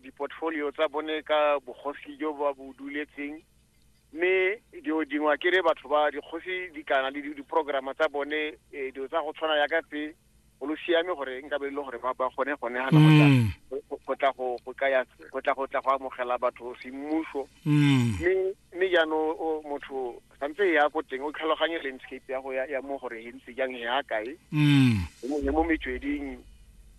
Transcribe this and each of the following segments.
diportfolio tsa bone ka bogosi jo ba bo duletseng mme dilo dingwe ke re batho ba dikgosi di kana le diprograma tsa bone eh, dilo tsa go tshwana ya ka tse go lo siame gore nka be e le gore ba ba gone gone ga mm. go tla go go kaya go tla go tla go amogela batho semmuso mm. mme mme jaanong motho tshwanetse e ya ko teng o tlhaloganye landscape ya go ya mo gore he ntse jang he ya kae mm. he mo metsweding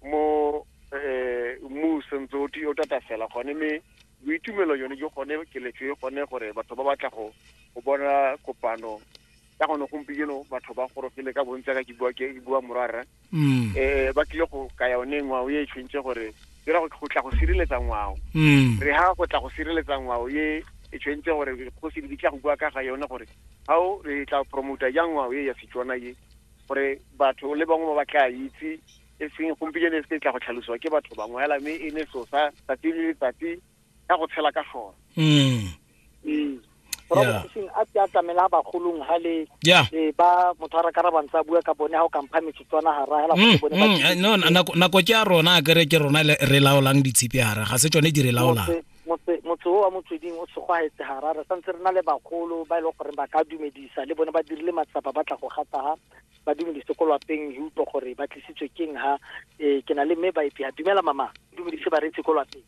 mo um mmu sentse o o tata fela gone mme boitumelo yone jo gone keletso e gone gore batho ba batla go bona kopano ka gone gompieno batho ba gorogile ka bontsi ka ke bua ke bua morara um ba tlile go ka yone ngwao e tshwentse gore ke ra go tla go sireletsa ngwao mm. re ha go tla go sireletsa ngwao ye e tshwentse gore go se di tla go bua ka ga yone gore how re tla promote jang ngwao ye ya setswana ye gore batho le bangwe ba ba tla itse e seng gompieno e se tla go tlhalosiwa ke batho bangwe hela mme e ne so sa tsatsi le letsatsi ka go tshela ka sone mm. mm. Yeah. a ke a tlamela bagolong ha le yeah. e, ba motho a rakara bantsa bua ka bone ha o kampha metsotswana ha rahela mm, bone mm, eh, no nako nako ke a rona a kere ke rona re laolang ditshipi hara ga se tsone di re laolang motse o wa motsweding o tshogwaetse hara re santse re na le bagolo ba e leng gore ba ka dumedisa le bone ba dirile matsapa ba tla go gataga ba dumedise ko lwapeng utlwa gore ba tlisitswe keng ha um ke na le mme ba epeya dumela mama dumedise bareetsi ko lwapeng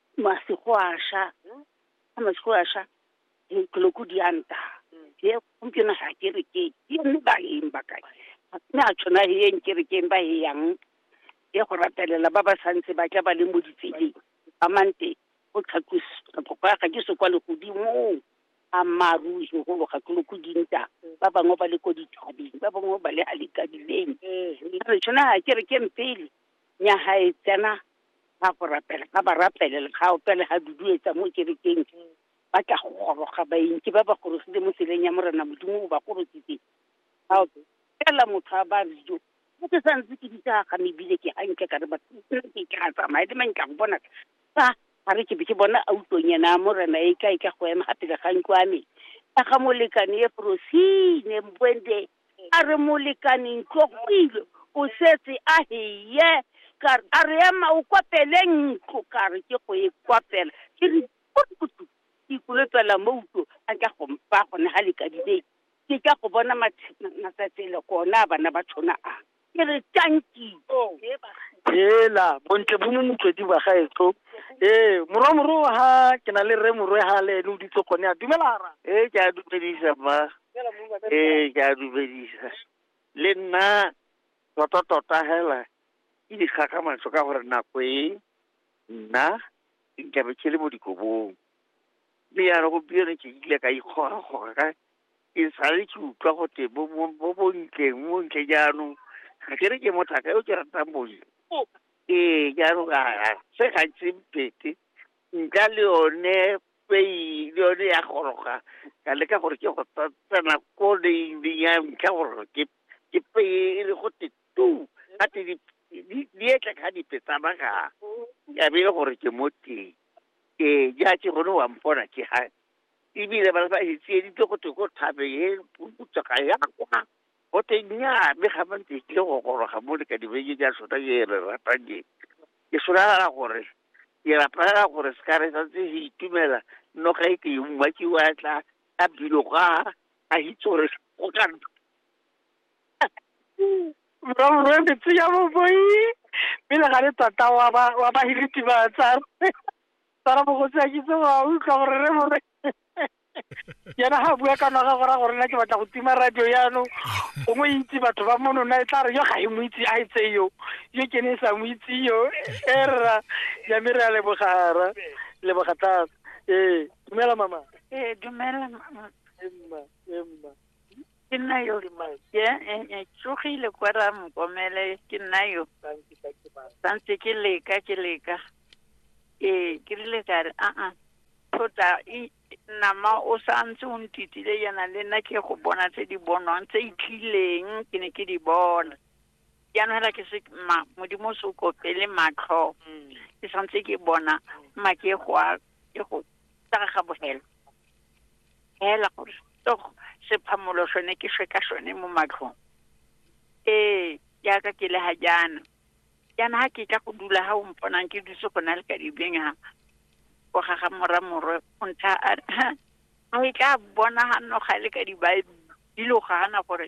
masigwasha a masigwasha dikoloku di a nta ye gompieno ga ke re ke ke mme ba eng ba kae mme a tshwana le eng ke re ke eng ba e yang ye go ratelela ba ba santse ba tla ba le mo ditseleng ba mante o tlhatlositlhoko ya ga ke se kwa legodimong a mmaaruri segolo ga koloko dinta ba bangwe ba le ko dithabeng ba bangwe ba le a lekabileng a re tshwana ga ke re ke mpele nyaga e tsena ga go rapela ga ba rapele le ga opele ga duduetsa mo kerekeng ba tla go goroga baeng ke ba ba gorogile mo tseleng ya morena modimo o ba gorositse ga fela motho a ba rijo mo ke sa ntse ke ditsa ga mebile ke gantle ka re ba ke ka tsamaya le mang ka go bona fa ga re ke be ke bona a utlonyana morena e ka e ka go ema ga pele ga ntlo a me ka ga molekane e frosine mbwende a re molekane ntlo go ile o setse a heye ka re a re ema o kwapele ntlo ka re ke go e kwapela ke re kutu ikolopela mo utlo a ka go mpa gone ga lekadile ke ka go bona matsatsi le gona bana ba tshwana a ke re tanki hela bontle bo mo motswedi ba gaetso ee morwa moro ha ke na le rre morwe ha le ene o ditse gone a dumela ra ee ke a dumedisa mma ee ke a dumedisa le nna tota tota hela ke di kgakgamatso ka gore nako e nna nkabe ke le mo dikobong Mme ya re gompieno ke ile ka ikgora gore ka ke sale ke utlwa go te bo bo- bo bontleng mo ntle jaanong ga ke re ke mothaka yo ke ratang bontle ee jaanong a a se ga ntse mpete nka le yone pei le yone ya goroga ka leka gore ke go tsa- tsena ko leing ya ntlha gore ke ke peye e le go te tu ga te di- di- di etla ka dipe tsa magaa ya be e le gore ke mo teng ee ja ke gone wa mpona ke ga ebile ba ba e tsieditse go te ko thabe e putsa ga ya kwa go te nya mme ga ba ntse tlile go goroga mo le ka dibeke ja sota ke re ratang ke ke solara gore ke rapela gore se ka re sa tse se itumela no ga e ke e mma ke wa tla a bilo ga a hitse gore go ka morwaborwe metsi ya boboi pele ga le tota wa ba wa ba hiriti ba tsara tsara bogotsi a kitse wa utlwa gore re more yena ga bua ka noga gora gore nna ke batla go tima radio yano gongwe e itse batho ba mono na e tla re yo ga e mo itse a e tse yo yo ke ne e sa mo itse yo e rra yame re a lebogara leboga thata ee dumela mama ee dumela mama emma emma ke nna yo ke eh, eh, tsogile kwa ra mokomele ke nna yo santse ke leka ke leka ee ke rile ka re aa thota nama o santse o ntitile yana le nna ke go bona tse di bonwang tse itlileng ke ne ke di bona jaanong hela ke se ma modimo o se o kopele matlho mm. ke santse ke bona ma ke go a ke go tsaga ga bogela hela gore tog sephamolo sone ke shwe ka sone mo matlhong ee jaaka ke le ga jaana jaana ga ke tla go dula ga o mponang ke dutse go na le ka dibeng ga go gaga mora morwe o ntsha a e tla bona ga noga le ka dibaebile o gana gore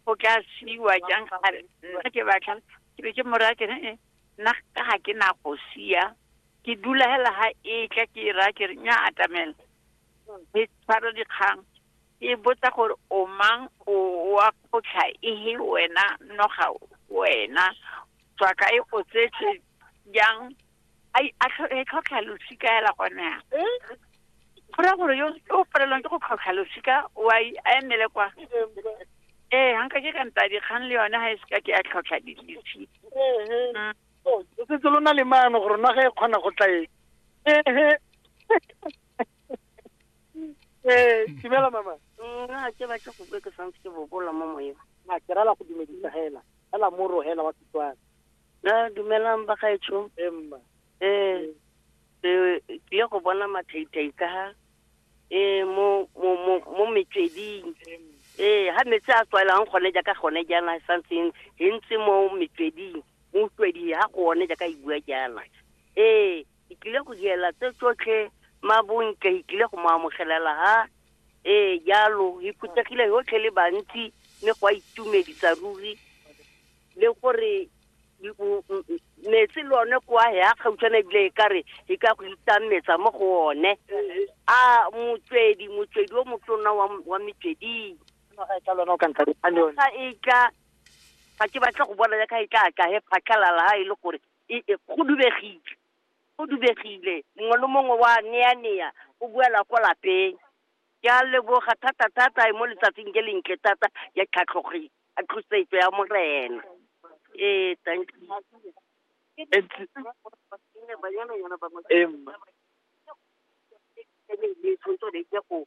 go tla siwa jang a re nna ke batla ke be ke mo raya kere "Eh, nna ka ga ke na go sia ke dula hela ga e tla ke e raya kere nya atamela ke tshwara dikgang ke botsa gore o mang o wa kgotlha ehe wena noga wena tswa kae o tsetse jang ai a e tlhotlha losika ela gone ya go ra gore yo o palelwang ke go tlhotlha losika o a emele kwa ee ga nka ke ka nta dikgang le yone ga e seka ke ya tlhotlha dilisi mm. o setse lo na le maano gore naga e kgona go tlaeng ee dumela mama nna ke batla go bue ke santse ke bobola mo moyeng a ke rala go dumedisa hela hela mo rogela wa setswana Ah, dumelang bagaetsho emma eh eh, ke tlile go bona mathaitai ka ha eh mo mo mo mo metsweding eh ha metsi a tswaelang gone jaaka gone jaana e santseng e ntse mo metsweding mo utlwedi ha gone jaaka e bua jaana eh ke tlile go diela tse tsotlhe mabontle ke tlile go mo amogelela ha eh jalo e phuthegile yotlhe le bantsi mme go a itumedisa ruri le gore metsi le one kwa ya kgautshwana ebile e kare e ka go itang metsa mo go one a motswedi motswedi o motona wa metsweding ga e tla ga ke batla go bona yaka e tla tla he phatlhalala ha e le gore e, e, go dubegile go dubegile mongwe le mongwe wa nea nea o buela ko lapeng ke a leboga thata thata e mo letsatsing ke lentle thata ya tlhatlhogile a tlosetso ya morena ee thank you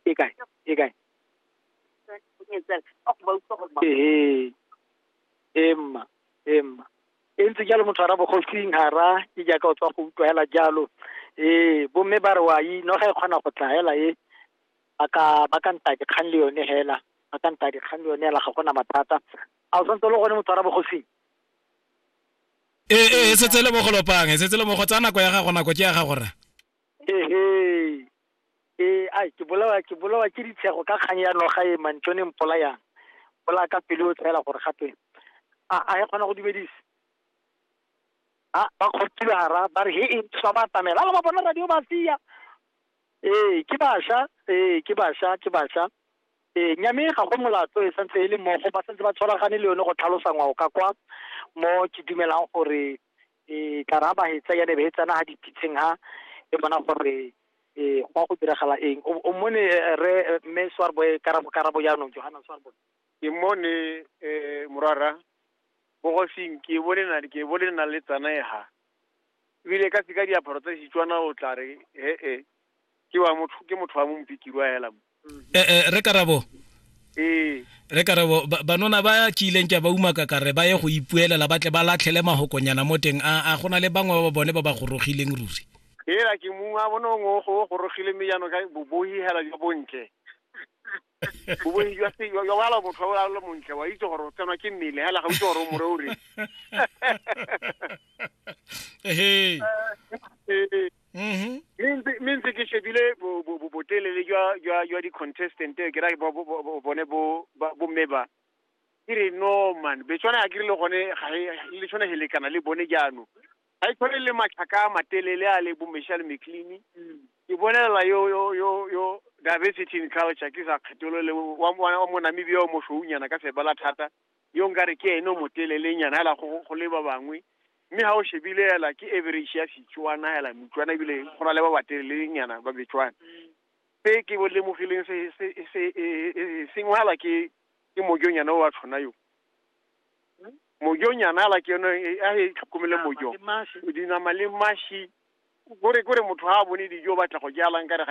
e kae e kae ee emma emma e ntse jalo motho ara bogosing hara e jaaka o tswa go utlwa hela jalo ee bomme ba re wa ino ga e kgona go tla hela e ba ka ba ka nta dikgang le yone hela ba ka nta dikgang le yone hela ga gona mathata a o santse le gone motho wa rabogosing ee ee e setse le mo go lopang e setse le mo go tsa nako ya gago nako ke ya gago rra ehe ee ai ke bolawa ke bolawa ke ditshego ka kgang ya noga e mantšone mpola yang bola ka pele o tshela gore gape a a e kgona go dumedisa a ba kgothile hara ba re he e tswa ba atamela ala ba bona radio ba sia Ee, ke basha, ee, ke basha, ke basha. Ee, nya mme ga go molato e santse e le mmogo ba santse ba tshwaragane le yone go tlhalosa ngwao ka kwa mo ke dumelang gore e tla ra ba hetsa ya ne be tsana ha dipitseng ha e bona gore e go a go diragala eng o o mone eh, re eh, mme swarbo e karabo karabo jaanong johanna swarbo ke mone um morara bogosing ke bole na ke bole na le tsana e ha ebile ka tsika diaparo tsa setswana o tla re he-e ke wa motho ke motho wa mompikiri wa hela mo mm-hmm. eh, eh, re karabo ee re karabo banona ba kileng ke ba umaka ka re ba ye go ipuelela ba tle ba latlhele mahokonyana mo teng a go na le bangwe ba bone ba ba gorogileng ruri ela ke mongwe a bone o gorogile mme jaanong ka bobohihela jo bontle boboi jwa se yo wala motho o le montle wa itse gore o tsenwa ke mmele hela ga itse gore o more o re ehe mme ntse ke shebile botelele jwa di-contestant ke ra bone bomme ba ke re no man betswana ya ke rile gone le tshwane he lekana le bone jaanong ga e tshwane le matlhaka a matelele a le bo michelle mclean ke bolelela yo yo yo yo diversity in culture ke sa kgetholole wa wa- wa monamibia o moswounyana ka sebala thata yo nka re ke ene o motelelenyana hela go go le ba bangwe mme ga o shebile hela ke average ya setswana hela motswana ebile go na le ba batelelenyana ba betswana se ke bo lemogileng se se se e- e- e- sengwe hela ke ke mojonyana o wa tshwana yo mojo nyana ala ke yone e- a e tlhokomele mojo dinama le mashi kore kore motho ha a bone dijo o batla go jalang ka re